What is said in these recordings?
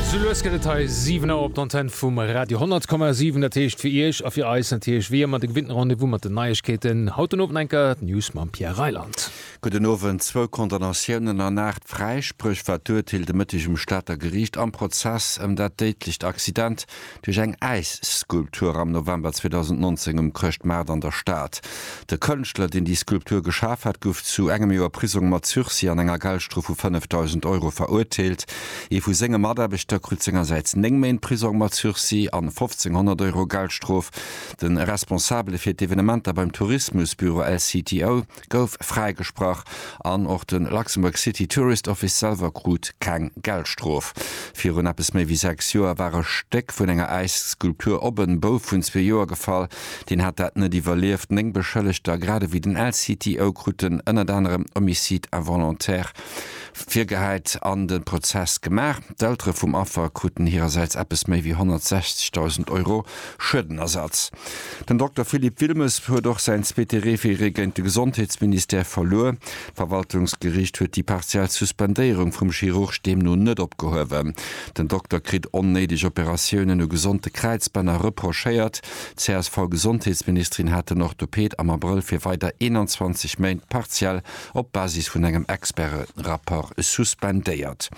Sou lues gëtt et hei 7 Auer op d'Antenn vum Radio 10,7. Dat heescht fir Iech a fir eis natierlech wéi ëmmer de gewinnten Rendez-vous mat den Neiegkeeten. Haut den Owend enker d'News mam Pierre Reyland. Gudden Owend. Zwou Condamnatiounen an aacht Fräispréch war d'Urteel de Mëtteg um Stater Geriicht am Prozess ëm dat déidlecht Accident duerch eng Äisskulptur am November 2019 um Chrëschtmaart an der Stad. De Kënschtler, deen déi Skulptur geschaf hat, gouf zu engem Joer Prisong mat Sursis an enger Geldstrof vu 5.000 Euro verurteelt. Ee vu senge Mataarbechter krut sengersäits néng Méint Prisong mat Sursis an 1.500 Euro Geldstrof. De Responsabele fir d'Evenementer beim Tourismusbüro LCTO, gouf fräigesprach an och de Luxembourg City Tourist Office selwer krut keng Geldstrof. Virun eppes méi wéi sechs Joer war e Stéck vun enger Äisskulptur op en Bouf vun zwee Joer gefall. Deen hat dat net iwwerlieft. Néng Beschëllegter, grad ewéi den LCTO, kruten ënnert anerem Homicide involontaire virgehäit an de Prozess gemaach. D'Eltere vum Affer kruten hirersäits eppes méi wéi 160.000 Euro Schuedenersatz. Den Dokter Philippe Wilmes huet och säin zweete Referé géint de Gesondheetsministère verluer. D'Verwaltungsgeriicht huet déi partiell Suspendéierung vum Chirurg deemno net opgehuewen. Den Dokter kritt onnéideg Operatiounen u gesonte Kräizbänner reprochéiert. D'CSV-Gesondheetsministerin hat den Orthoped am Abrëll fir weider 21 Méint partiell op Basis vun engem Experterapport suspendéiert.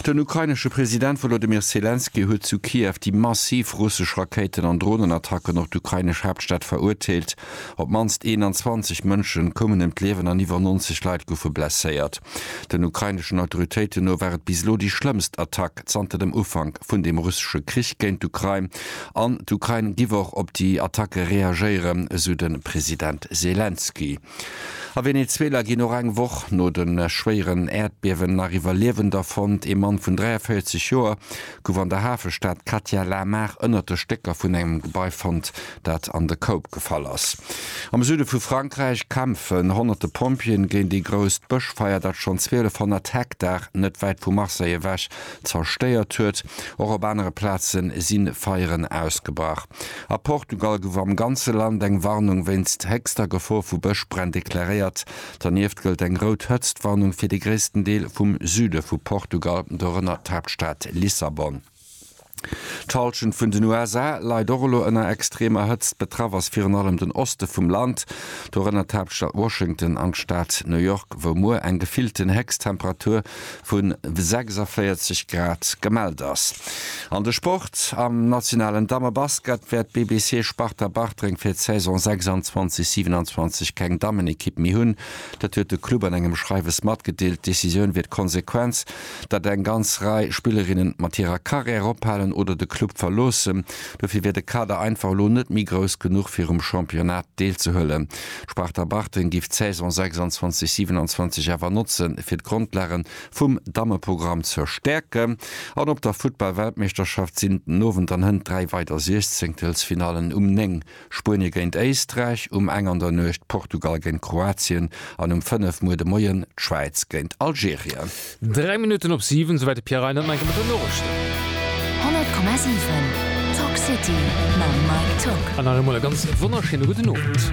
Den ukrainesche President Wolodymyr Selenskyj huet zu Kiew déi massiv russesch Rakéiten an Dronenattacken op d'ukrainesch Haaptstad verurteelt. Op d'mannst 21 Mënsche koumen ëm d'Liewen an iwwer 90 Leit goufe blesséiert. Den ukraineschen Autoritéiten no war et bis elo déi schlëmmst Attack zanter dem Ufank vun dem russesche Krich géint d'Ukrain an d'Ukrain giff och op déi Attacke reagéieren, esou de President Selenskyj. A Venezuela ginn och eng Woch no de schwéieren Äerdbiewen nach Iwwerliewender fonnt. Ee Mann vun 43 Joer gouf an der Hafestad Catia la Mar ënnert de Stécker vun engem Gebai fonnt, dat an de Koup gefall ass. Am Süde vu Frankräich kämpfen honnerte Pompjeeën géint ee grousst Bëschfeier, dat schonn 1200 Hektar net wäit vu Marseille ewech Zerstéiert huet. Och op anere Plaze si Feieren ausgebrach. A Portugal gouf am ganze Land eng Warnung wéinst héchster Gefor vu Bëschbränn deklaréiert. Dernieft gëllt eng rout Hëtztwarnung fir de gréissten Deel vum Süde vu Portugal, dorënner d'Haaptstad Lissabon. D'Hallschent vun den USA leit och elo ënner extremer Hëtzt. Betraff ass virun allem den Oste vum Land, dorënner d'Haaptstad Washington an d'Stad New York, wou muer eng gefillten Héchsttemperatur vu 46 Grad gemellt ass. An de Sport, Am nationalen Dammebasket wäert BBC Sparta Bartreng fir d'Saison 26, 27 keng Dammenekipp méi hunn. Dat huet de Club an engem Schreiwes matgedeelt. D'Decisioun wier d'Konsequenz, datt eng ganz Rei Spillerinnen mat hirer Karriär ophalen oder de Club verloossen. Dofir wier de Kader einfach elo net méi grouss genuch fir um Championnat deelzehuelen. D'Sparta Bartreng giff d'Saison 26, 27 awer notzen fir d'Grondlagen vum Dammeprogramm ze stäerken an op der Futtball-Weltmeeschterschaft sinn den Owend an Hënt 3 weider Siechzengtelsfinallen, um 9 Spuenie géint Éisträich, um eng an der Nuecht Portugal géint Kroatien an um 5 muer de Moien d'Schwäiz géint Algerien. Dräi Minutten op siwen, souwäit de Pierre Reynen nach eng Kéier mat den Noriichten. 100,7 Talk City mam Mike Tock. An nach eemol e ganz wonnerschéine gudden Owend.